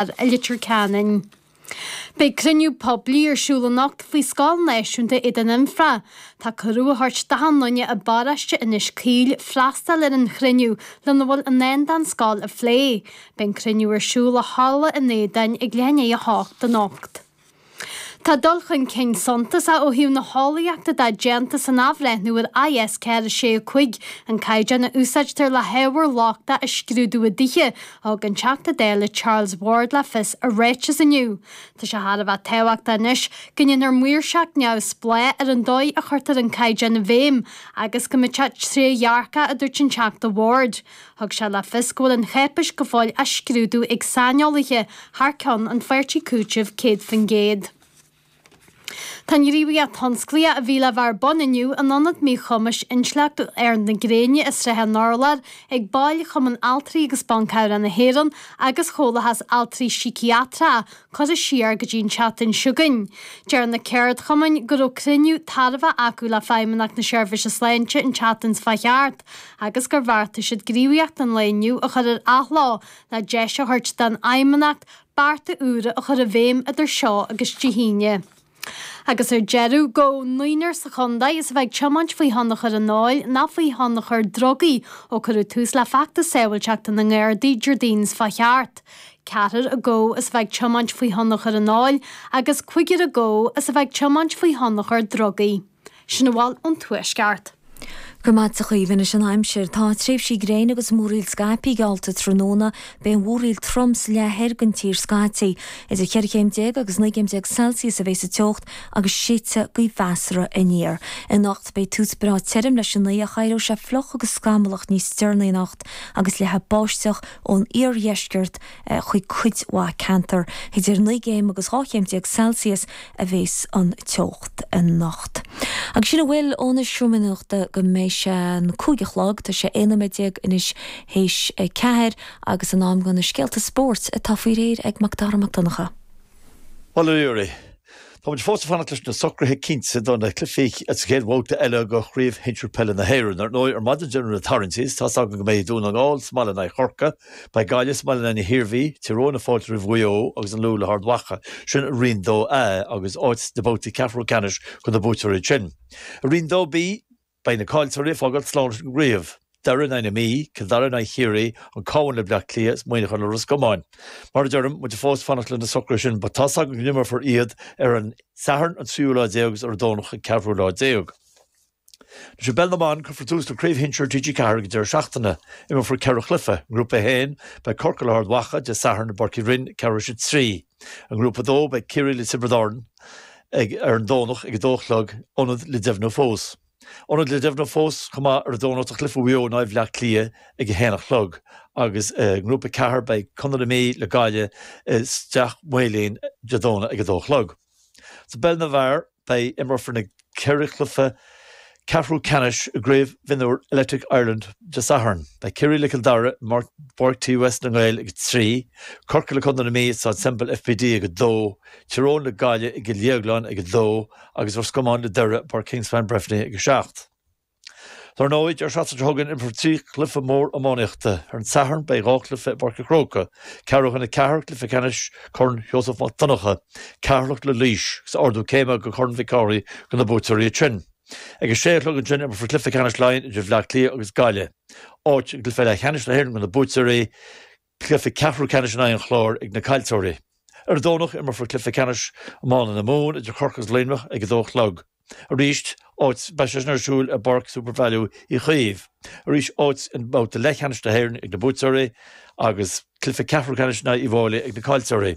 i Leitir Ceanainn. Beidh cruinniú poiblí ar siúl anocht faoi scoil náisiúnta Éadan Anfa. Tá cuireadh á thabhairt d'achan duine i bparóiste Inis Caoil freastal ar an chruinniú lena bhfuil i ndán don scoil a phlé. Beidh an cruinniú ar siúl i halla an Éadáin ag leath i ndiaidh a hocht anocht. Tá dul chun cinn suntasach ó thaobh na heolaíochta de déanta san athbhreithniú ar IS 465, an caighdeán a úsáidtear le hábhair lochtach a scrúdú i dtithe, thug an Teachta Dála Charles Ward le fios i ráiteas inniu. Tá sé thar a bheith tábhachtach anois go ndéanfar maoirseacht neamhspleách ar an dóigh a chuirtear an caighdeán i bhfeidhm agus go mbeidh sé trédhearcach, a dúirt an Teachta Ward. Thug sé le fios go bhfuil an cháipeis go fóill á scrúdú ag saineolaithe thar ceann an Pháirtí Cúitimh 100%. Tá an ghníomhaíocht thionsclaíoch a bhí le bheith ar bun inniu in Ionad Míchumais Intleachtúil Aird na Gréine i Srath an Urláir ag baill Chumann Altraí agus Ban Cabhrach na hÉireann agus Chomhlathas Altraí Síciatrach Cuireadh siar go dtí an tseachtain seo chugainn. Deir na ceardchumainn go raibh cruinniú tairbheach acu le Feidhmeannacht na Seirbhíse Sláinte an tseachtain seo a chuaigh thart agus gur bheartaigh siad gníomhaíocht an lae inniu a chur ar athló le deis a thabhairt don Fheidhmeannacht bearta úra a chur i bhfeidhm idir seo agus Dé hAoine. Agus ar deireadh, gabhadh naonúr sa chontae as a bheith ag tiomáint faoi thionchar an óil ná faoi thionchar drugaí ó cuireadh tús le feachtas sábhailteachta na nGardaí Déardaoin seo a chuaigh thart. Ceathrar acu as a bheith ag tiomáint faoi thionchar an óil agus cúigear acu as a bheith ag tiomáint faoi thionchar drugaí. Sin a bhfuil ón Tuaisceart. Go raibh maith agat a Chaoimhe Anois an Aimsir. Tá tréimhsí gréine agus múráil scaipthe geallta tráthnóna. Beidh an mhúráil trom sa leath thoir den tír scaití. Idir cheithre chéim déag agus naoi gcéim déag Celsius a bheidh sa teocht agus séidfidh gaoth mheasartha aniar. Anocht beidh tús breá tirim leis an oíche ach éireoidh sé fliuch agus scamallach níos deireanaí anocht agus leathfaidh báisteach ón iardheisceart chuig cuid mhaith ceantar. Idir naoi gcéim agus dhá chéim déag Celsius a bheas an teocht anocht. Agus sin a bhfuil ón seomra nuachta go mbeidh sé an cúig a chlog. Tá sé aon nóiméad déag anois th'éis a ceathair agus in am do na scéalta spóirt atá faoi réir ag Mac Dara Mac Donncha. Bhuel a Ruairí, Tá muid fós ag fanacht leis na socruithe cinnte do na cluichí sa chéad bhabhta eile de Chraobh Shinsir Peile na hÉireann. Ar ndóigh, ar maidin deireadh na tarraingtí, is tá's againn go mbeidh Dún na nGall sa mbaile in aghaidh Chorcaí, beidh Gaillimh sa mbaile in aghaidh na hIarmhí, Tír Eoghain ag fáilt roimh Mhaigh Eo agus an Lú le hArd Mhacha. Sin i Roinn 2A agus áit sna babhtaí ceathrú ceannais do na buaiteoirí sin. I Roinn 2B. Beidh na caillteoirí ag fágáil slán ag an gcraobh, Doire in aghaidh na Mí, Cill Dara in aghaidh Chiarraí, An Cabhán le Bleá Cliath is Muineachán le Ros Comáin. Mar a deirim, muid ag fós fanacht le na socruithe sin but tá's agam go n-imreofar iad ar an Satharn an tríú lá déag is ar an Domhnach an ceathrú lá déag. Anois i bpeil na mban, cuirfear tús le Craobh Shinsir TG4 ag an deireadh seachtaine. Imreofar ceithre chluiche. I nGrúpa 1, beidh Corcaigh le hArd Mhacha, Dé Sathairn i bPáirc Uí Rinn, ceathrú tar éis 3. I nGrúpa 2, beidh Ciarraí le Tiobraid Árann ag ar an Domhnach ag 2 a chlog, ionad le deimhniú fós. Ionad le deimhniú fós chomh maith ar an Domhnach do chluiche Mhaigh Eo in aghaidh Bhleá Cliath ag 1 a chlog agus i nGrúpa 4, beidh Contae na Mí le Gaillimh i Steach Maoilín Dé Domhnaigh ag 2 a chlog. Sa bpeil na bhfear, Beidh imreofar na ceithre chluiche ceathrú ceannais i gCraobh Mhionúir Electric Ireland Dé Sathairn. Beidh Ciarraí le Cill Dara i bPáirc TUS na nGael ag 3, Corcaigh le Contae na Mí i Staid Semple FBD ag 2, Tír Eoghain le Gaillimh i gCill Dhéagláin ag 2 agus Ros Comáin le Doire i bPáirc Kingspan Breffni ag 7. Dar ndóigh, deireadh seachtaine seo chugainn, imreofar trí chluiche mór iománaíochta. Ar an Satharn, beidh dhá chluiche i bPáirc a' Chróca, ceathrú chun a 4, Cluiche Ceannais Corn Sheosamh Mac Donncha, Ceatharlach le Laois, agus ardú céime go Corn Mhic Cárthaigh do na buaiteoirí ansin. Ag a sé a chlog ansin, imreofar Cluiche Ceannais Laighean idir Bhleá Cliath agus Gaillimh, áit i gcluiche leathcheannais na hÉireann do na buaiteoirí, Cluiche ceathrú ceannais in aghaidh an Chláir ag na caillteoirí. Ar an Domhnach imreofar cluiche ceannais iomána na Mumhan idir Corcaigh agus Luimneach ag a dó a chlog. Arís áit, beidh sé sin ar siúl i bPáirc Supervalu Uí Chaoimh. Arís áit i mbabhta leathcheannais na hÉireann ag na buaiteoirí agus cluiche ceathrú ceannais in aghaidh Uí bhFáilí ag na caillteoirí.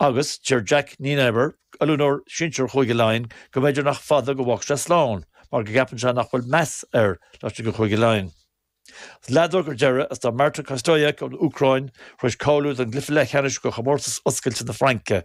Agus deir Jacques Nienaber, oiliúnóir sinsir Chúige Laighean, go mb'fhéidir nach fada go bhfágfaidh sé slán mar go gceapann sé nach bhfuil meas air laistigh de Chúige Laighean. Leadóg ar deireadh, is tá Marta Kostyuk ón Úcráin tar éis cáiliú don gcluiche leathcheannais de Chomórtas Oscailte na Fraince,